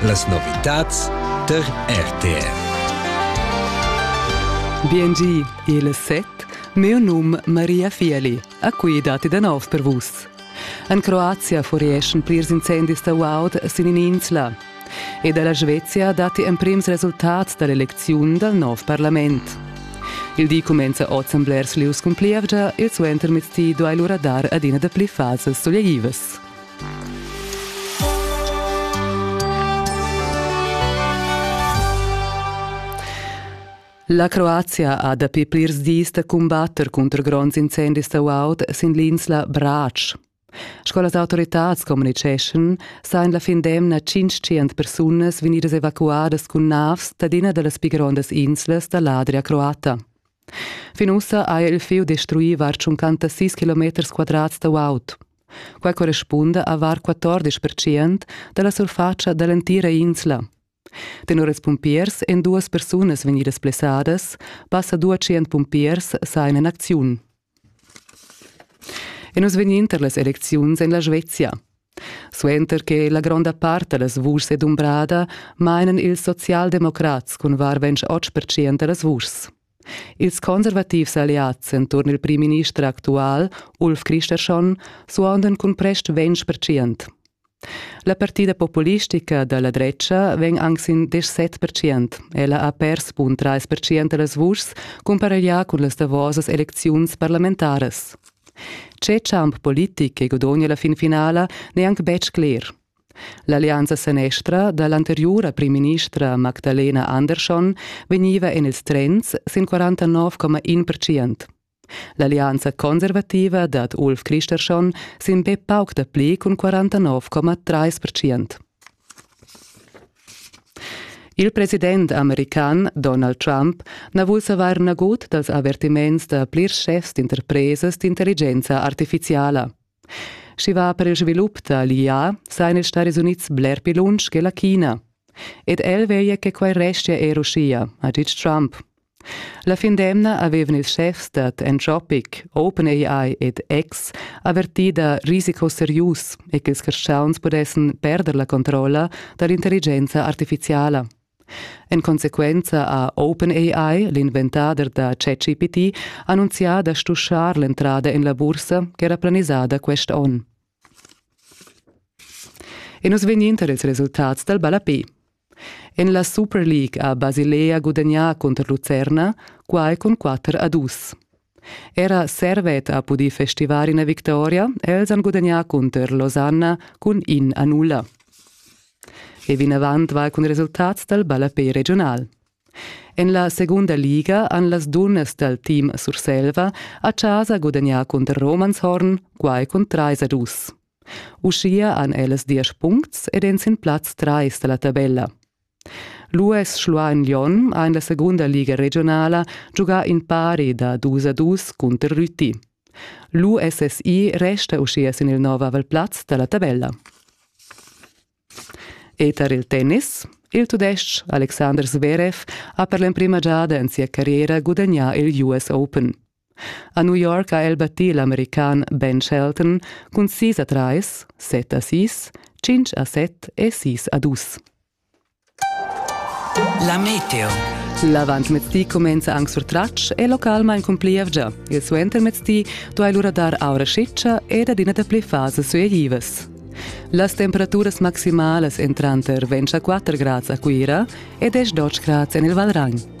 Las novitads tar RTR. Biengi, il set, mio num Maria Fieli, a cui dati da nov per vus. En Croazia furieschan plirs incendis da guaud sin in'insla. E dalla Svezia dati emprims resultats dall'elecziun dal nov parlament. Il di cumenza oz en blers lieus cun plievgia e suentermezdi duai lura dar adina da pli fasas suleglivas. La Croazia ha dapi plirs dis da cumbatter cunter gronds incendis sauaud sin l'insla Brač. Sco las autoritads communiceschan, sajan la fin d'emna 500 persunas vegnidas evacuadas cun navs dad ina da las pi grondas inslas da l'Adria croata. Fin ussa ha el fiu destruì var tschuncantasís kilometers quadrats da guaud. Quai correspunda a var 14 percent da la surfatscha da l'entira insla. Tenor ils pumpiers èn duas persunas vegnidas blessadas, passa 200 pumpiers sajan en acziun. E nus vegnin tar las elecziuns en la Svezia. Suenter che la gronda part da las vuschs è dumbrada, mainan ils socialdemocrats cun var ventg otg pertschient da las vuschs. Ils conservativs alliads enturn il primminister actual, Ulf Kristersson, suondan cun prest ventg pertschient. La partida populistica da la drecha vegn anc sin desch set pertschient. Ella ha pers bun trais pertschient da las vuschs cumpareglià cun las davosas elecziuns parlamentaras. Tge champ politic che gudogna la fin finala n'è anc betg cler. L'allianza senestra da l'anteriura primministra Magdalena Andersson vegniva en ils trends sin 49,1%. L'allianza conservativa dad Ulf Christersson sin be pauc dapli cun 49,3%. Il president american Donald Trump na vul savair nagut dals avertiments da plirs schefs d'interpresas d'intelligenza artifiziala. Sch'i va per il svilup da l'IA, sajan ils Stadis Unids bler pli lunsch che la China. Ed el veglia che quai restia er uschia, ha ditg Trump. La fin d'emna avevan ils schefs dad Anthropic, OpenAI ed X avertì da risicos serius e ch'ils carstgauns pudessan perder la controlla da l'intelligenza artifiziala. En consequenza ha OpenAI, l'inventader da ChatGPT, annunzià da stuschar l'entrada en la bursa ch'era planisada quest onn. E nus vegnin tar ils resultats dal ballapé. En la Superleague ha Basilea gudagnà cunter Lucerna, quai cun quatter a dus. Era Servet ha pudì festivar ina victoria, els han gudagnà cunter Losanna cun in a nulla. E vinavant vai cun resultats dal ballapé regional. En la segunda liga han las dunnas dal team Surselva a chasa gudagnà cunter Romanshorn, quai cun trais a dus. Uschia han ellas diesch puncts ed èn sin plaz trais da la tabella. L'US Schluein Lyon ha en la segunda liga regionala giugà in pari da dus a dus cunter Rüti. L'USSI resta uschia sin il nov aval plaz da la tabella. E tar il tennis il tudestg Alexander Zverev ha per l'emprima giada en sia carriera gudagnà il US Open. A New York ha el battì l'american Ben Shelton cun sis a trais, set a sis, tschintg a set e sis a dus. La meteo. L'avantmezdi cumenza anc sur tratsch e localmain cun plievgia. Il suentermezdi duai lura dar aura scitscha ed adina dapli fasas suegivas. Las temperaturas maximalas èn tranter 24 grads a Cuira e 10 grads en il Valragn.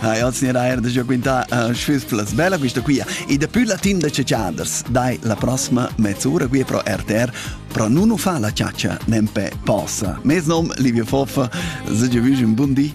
Ah, io signor Ayer da già quinta uh, schüs plus bella quista quia e da più la team da ciaciaders dai la prossima mezz'ora qui pro RTR pro non fa la ciaccia nempe possa. Mes nom Livio Foffa, se già un buon di.